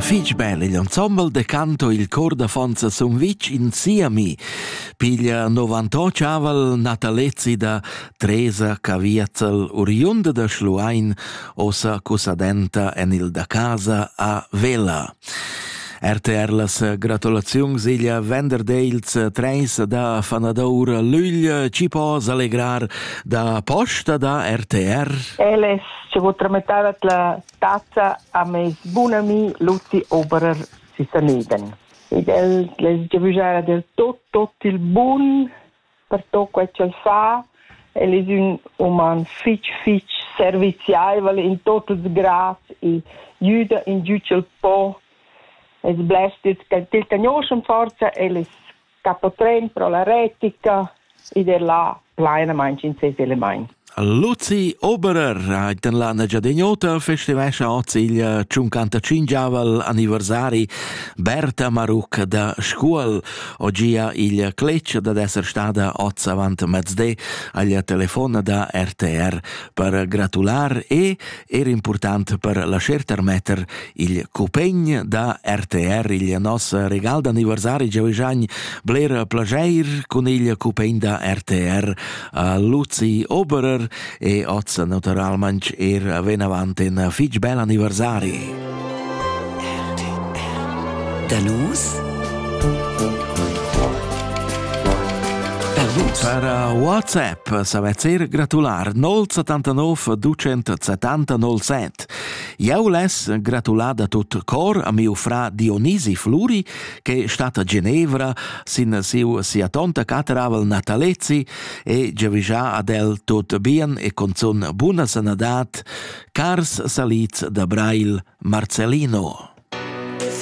Fich bel igl ensemble da canto il cor d'affons a Sumvitg in Siami piglia 98 aval natalezi da Tresa Caviazzel oriunda da Schluein ossa cusadenta en il da casa a Vela. RTR las gratulaziuns igl venderdels treis da fanadour Lügl ci po allegrar da posta da RTR. El es ci vu tramitada la Tat ha meis bun ami Luzi Oberer si Saneden ed el les giavüschara del tot, tot il bun per tot quai ch'el fa. El es ün uman fich, fich serviziaivel in tot ils grads e güda in giü ch'el po. Es blers d'els ch'el cagnoschan forsa, el es Capotren pro la retica, id è là plainamaing in ses elemaints. Luzi Oberer ait en la Negiadegnota festivescha oz il 55 anniversari Berta Maruc da Scuol. Ogia il cletg da esser stada oz avant mezde agl telefon da RTR per gratular e er important per lascher termetter il cupegn da RTR il nos regal d'anniversari gioigiagn bler plageir cun il cupegn da RTR a Luzi Oberer e oz naturalmanc er venavant in fitg bel anniversari. Da nus? Per WhatsApp s'avez eir gratular 079 270 Jau less gratular da tut cor a miu fra Dionisi Fluri, che stat a Genevra sin siu sia tonta cateravel Natalezi e giavigia ad el tut bien e con zun buna sanadad Cars salids da Brail, Marcellino!